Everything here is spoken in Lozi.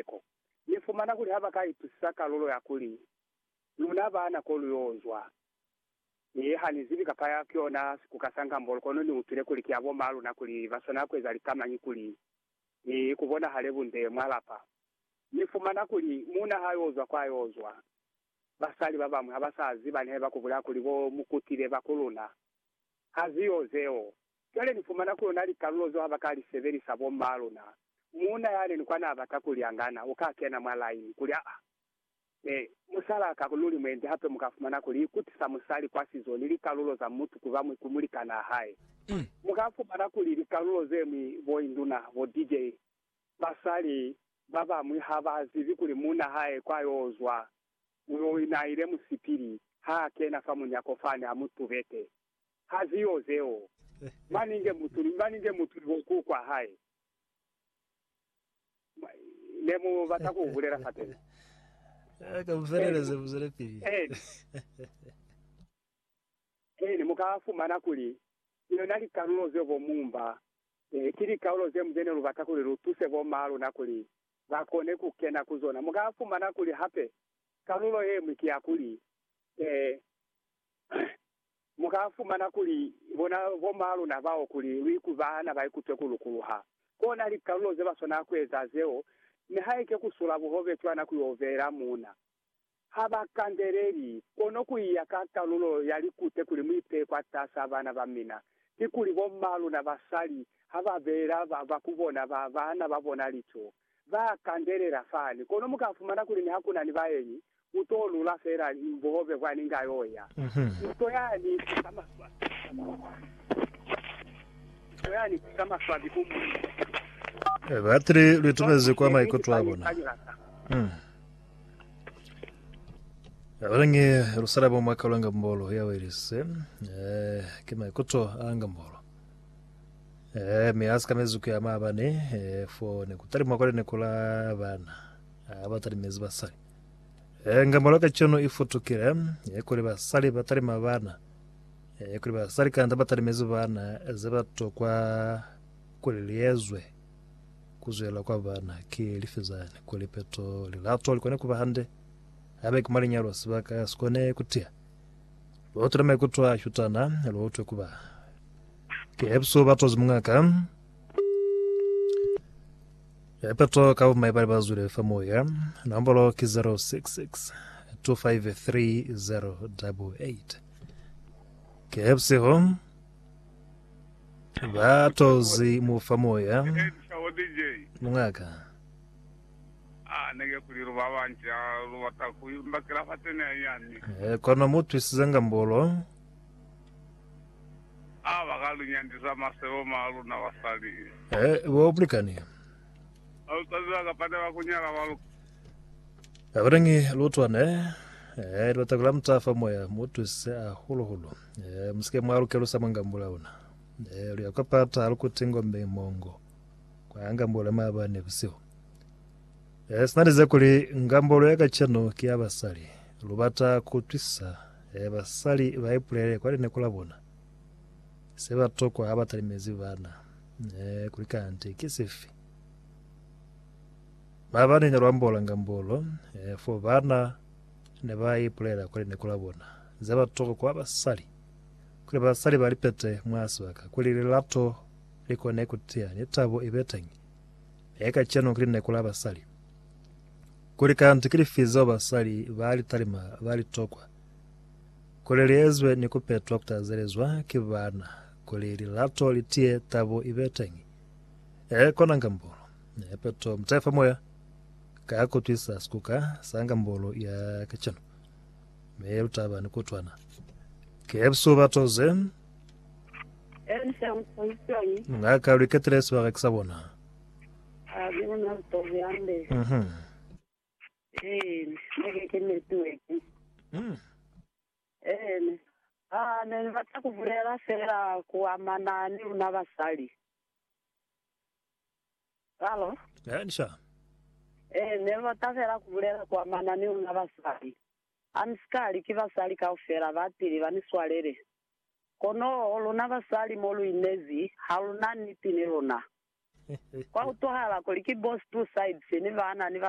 Seko. Ni fumana kuli ha ba ka itusisa kalulo ya kuli, Luna baana ko lu yo zwa. Mi ha ni zibi kapa ya ki yona sikuka sa Ngambolo, kono ni utwile kuli ki ya bo maa luna kuli ba swanela ku eza lika mañi kuli ni ku bonahale bunde mwa lapa. Ni fumana kuli muuna ha yo zwa kwa yo zwa, basali ba bañwi ha ba sa ziba ni ha ba ku bulaya kuli bo mu kutile ba ku luna. Ha zi yo zeo. Cwale ni fumana ku na likalulo zeo ha ba ka li sebelisa bo m'ma luna. Muuna yani ni kwa na bata ku lyangana, u ka kena mwa line, kuli, Aa, ne, musalaa ka luli mwendi hape mu ka fumana kuli ikutisa musali kwa sizo ni likalulo za mutu ku ba mwi ku mulikanaa hae. Mu ka fumana kuli likalulo ze mwi, bo induna, bo DJ, basali ba ba mwi ha ba zibi kuli muuna hae kwa yo zwa, u yo ina ile musipili, ha a kena fa munyako fani, a mu tubete. ha ziyo zeo. Mani nge mutu ni mani nge mutu ni boku kwa hae ne mu bata ku bulela fa teni. Ka mu feleleze, mu zwelepili. Eeni, mu ka fumana kuli ki yona likalulo zeo bo Mumba ki likaulo ze mu ze ne lu bata kuli lu tuse bo maa luna kuli ba kone ku kena ku zona. Mu ka fumana kuli hape kalulo ye ñwi ki ya kuli, Mu ka fumana kuli bona bo mwa luna bao kuli lu ikubana ba ikutwe ku lukuluha. Ko na likalulo ze ba swanela ku eza zeo, nihaike ku sula buhobe cwana ku y'o beela muuna. Ha ba kandeleli, kono ku iya ka kalulo ya likute kuli mu ipeye kwatas'a bana ba mina. Kikuli bo mwa luna basali ha ba beela ba ba ku bona ba bana ba bona licoo, Ba kandelela fani, kono mu ka fumana kuli ni ha ku na ni baenyi, u t'o lula fela bobe kwa ni nga y'o ya. Nto ya ni fisa maswabi a mataha. Nto ya ni fisa maswabi ku muuna. Batili lwi tubezi kwa maikuto a bona. Abalangi lusala bo mwa kaulanga mbolo ya Wales. Ki maikuto a langa mbolo. Eh, mi a si kanezi ku ya maabane, eh, fo ne ku talimwa kwale ne ku la bana. Ah, ba talimezi basali. Eh, ngambalo ka cono i futukile, eh, kuli basali ba talima bana. Eh, kuli basali kanda ba talimezi bana, ze ba tokwa kuli liezwe ku zwela kwa bana ki lifi zani, kuli peto, lilato li kone ku ba hande. Abe ki mwa linyalo, sibaka sikone ku tiya. Lotile maikuto a shutana, lotwe kuba ke episo ba tozi mungaka. Epeto ka bumai bali bazwile fa moya. Nombolo ki 066 253088. Ke episeho ba tozi mu fa moya mungaka. Ha ne ke kuli lu ba banci, ha lu bata ku imba kilafate ne i yani. He kono mu twisizanga mbolo. Ha ba ka lu nyandisa masebo ma luna basali. He bo bulikani. Ha lu sa ziba kapa ne ba ku nyala ba lu. Ha ku nangi lutwa ne He lu bata ku lamuta fa moya, mu twisise hahulu-hulu. He mu si ke mwa lu kelusa mwa ngambula una. He lu ya kwa pata, ha lu kuti ngombe mongo. Kwa ngambolo ya maabane busihu, eh, sina lize kuli ngambolo ya kacenu ki ya basali. Lubata kuutwisisa, eh, basali baipulele kwa lineko labona se batokwa habatalimezi bana, eh, kuli kanti ki sifi. Maabane ne luambola ngambolo, eh, fo bana ne ba ipulela kwa lineko labona ze batokwa kwa basali, kuli basali balipete mwa sibaka, kuli lilato Li kone ku tiya ni tabo i be teñi. Mie kacenu ki lineku la basali. Kuli kanti ki lifi zeo basali ba li talima ba li tokwa kuli li ezwe ni ku petwa ku tazelezwa ki baana kuli lilato li tiye tabo i be teñi? Ee, kona Ngambolo. Ne peto mutayi fa moya ka ku twisa sikuka sa Ngambolo ya kacenu. Mi lu taba ni kutwana. Ki episu ba toze. Ngaka lwi ketile sibareki sa bona. Mhm. Mm. Ene. Ah, ne ni batla ku bulela fela ku amana ni luna basali. Halo? Eh, ni sha. Eh, ne ni batla fela ku bulela ku amana ni luna basali. Ha ni si ka li, Ki basali kaufela ba pili ba ni swalele. Kono luna basali mo lu inezi, ha lu na niti ni luna. Kwa utwahala kuli ki bo Spruceids ni baana ni ba